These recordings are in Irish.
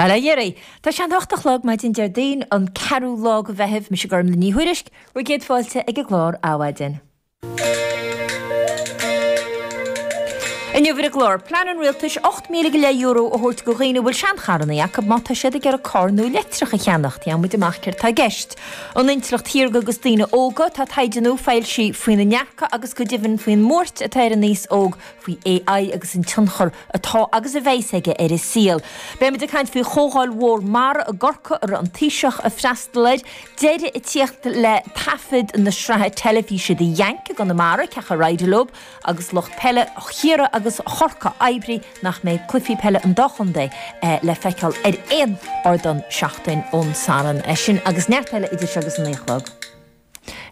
Ar éirigh! Tá sé ag an hocht a chlog maidin Déardaoin, an ceathrú lá go Mheitheamh, mise Gormlaith Ní Thuairisg, bhur gcéad fáilte ag an gclár Adhmhaidin. Inniu ar an gclár, plean an rialtais ocht míle go leith euro a thabhairt go dhaoine a bhfuil seancharranna acu má tá siad ag iarraidh carr nua leictreach a cheannacht, gheobhaimid amach céard tá i gceist. An intleacht shaorga agus daoine óga, tá taighde nua foilsithe faoina ndearcadh agus go deimhin faoin mbuairt atá ar an aos óg faoi AI agus an tionchar atá agus a bheidh's aige ar an saol. Beimid ag caint faoi Chomhdháil Mhór Mara i gCorcaigh a raibh an Taoiseach ag freastal air, deireadh ag tíocht le taifead na sraithe teilifíse The Yank i gConamara, ceathanna Roth go Lúb agus lucht peile Chiarraí agus Chorcaí oibrithe nach mbeidh cluichí peile an dá chontae le feiceáil ar aon ardán seachtain ón Satharn sin agus neart eile idir seo agus an naoi a chlog.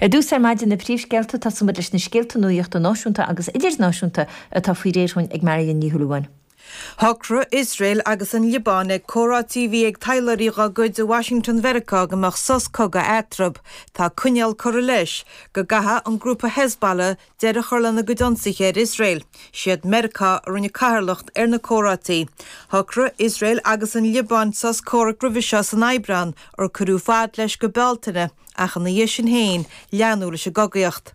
Ar dtús ar maidin, na príomhscéalta, tosóimid leis na scéalta nuachta náisiúnta agus idirnáisiúnta atá faoi réir dhúinn ag Marion Ní Shúilleabháin. Shocraigh Iosrael agus an Liobáin ag comhráití a bhí ag taidhleoirí dha gcuid i Washington Mheiriceá go mbeadh sos cogaidh eatrab. Tá coinníoll curtha leis go gcaithfeadh an grúpa Hezbollah deireadh a chur lena gcuid ionsaithe ar Iosrael. Siad Meiriceá a rinne cathaoirleacht ar na comhráití. Shocraigh Iosrael agus an Liobáin sos comhraic roimhe seo san Aibreán, ar cuireadh fad leis go Bealtaine. Ach ina dhiaidh sin féin leanadh leis an gcogaíocht.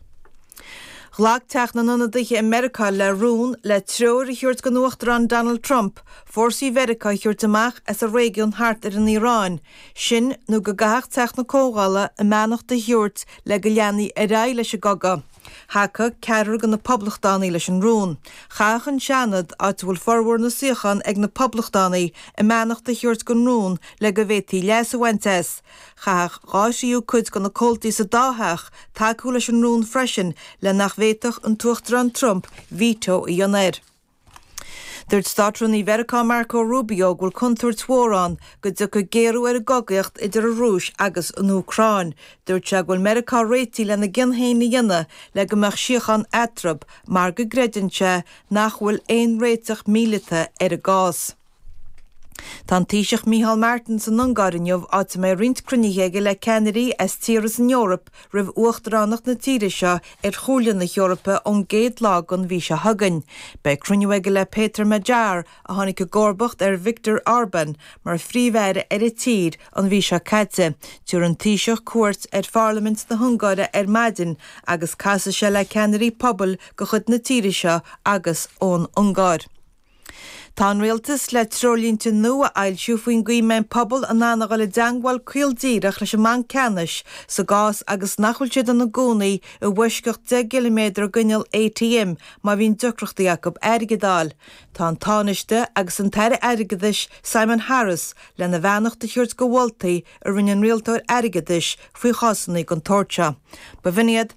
Ghlac Teach na nIonadaithe i Meiriceá le rún le treoir a thabhairt don Uachtarán Donald Trump fórsaí Mheiriceá a thabhairt amach as an réigiún thart ar an Iaráin, sin nó go gcaithfeadh Teach na Comhdhála a mbeannacht a thabhairt le go leanfaí ar aghaidh leis an gcogadh. Thacaigh ceathrar de na Poblachtánaigh leis an rún. Chaithfeadh an Seanad, áit a bhfuil formhór na suíochán ag na Poblachtánaigh, a mbeannacht a thabhairt don rún le go bhféadfaí leas a bhaint as. Chaithfeadh dhá thríú cuid de na comhaltaí sa dá theach tacú leis an rún freisin le nach bhféadfadh an tUachtarán Trump veto a dhéanamh air. Dúirt Státrúnaí Mheiriceá Marco Rubio go bhfuil contúirt mhór ann go dtiocfaidh géarú ar an gcogaíocht idir an Rúis agus an Úcráin. Dúirt sé go bhfuil Meiriceá réitithe lena gcion féin a dhéanamh le go mbeadh síochán eatrab mar go gcreideann sé nach bhfuil aon réiteach míleata ar an gcás. Tá an Taoiseach Micheál Martin san Ungáir inniu áit a mbeidh roinnt cruinnithe aige le ceannairí as tíortha san Eoraip roimh uachtaránacht na tíre seo ar Chomhairle na hEorpa ón gcéad lá den mhí seo chugainn. Beidh cruinniú aige le Péter Magyar a tháinig i gcomharbacht ar Viktor Orbán mar Phríomh-Aire ar an tír an mhí seo caite. Tiúrfaidh an Taoiseach cuairt ar Pharlaimint na hUngáire ar maidin agus casfaidh sé le ceannairí pobail de chuid na tíre seo agus ón Ungáir. Tá an Rialtas le treoirlínte nua a fhoilsiú faoin gcaoi a mbeidh an pobal in ann a dhul i dteangmháil caol díreach leis an mBanc Ceannais sa gcás agus nach bhfuil siad ina gcónaí i bhfoisceacht deich gciliméadar d'inneall ATM má bhíonn deacrachtaí acu airgead a fháil. Tá an Tánaiste agus an tAire Airgeadais, Simon Harris, lena bheannacht a thabhairt do mholtaí a rinne an Rialtóir Airgeadais faoi chásanna den tsórt seo. Ba bhinn iad.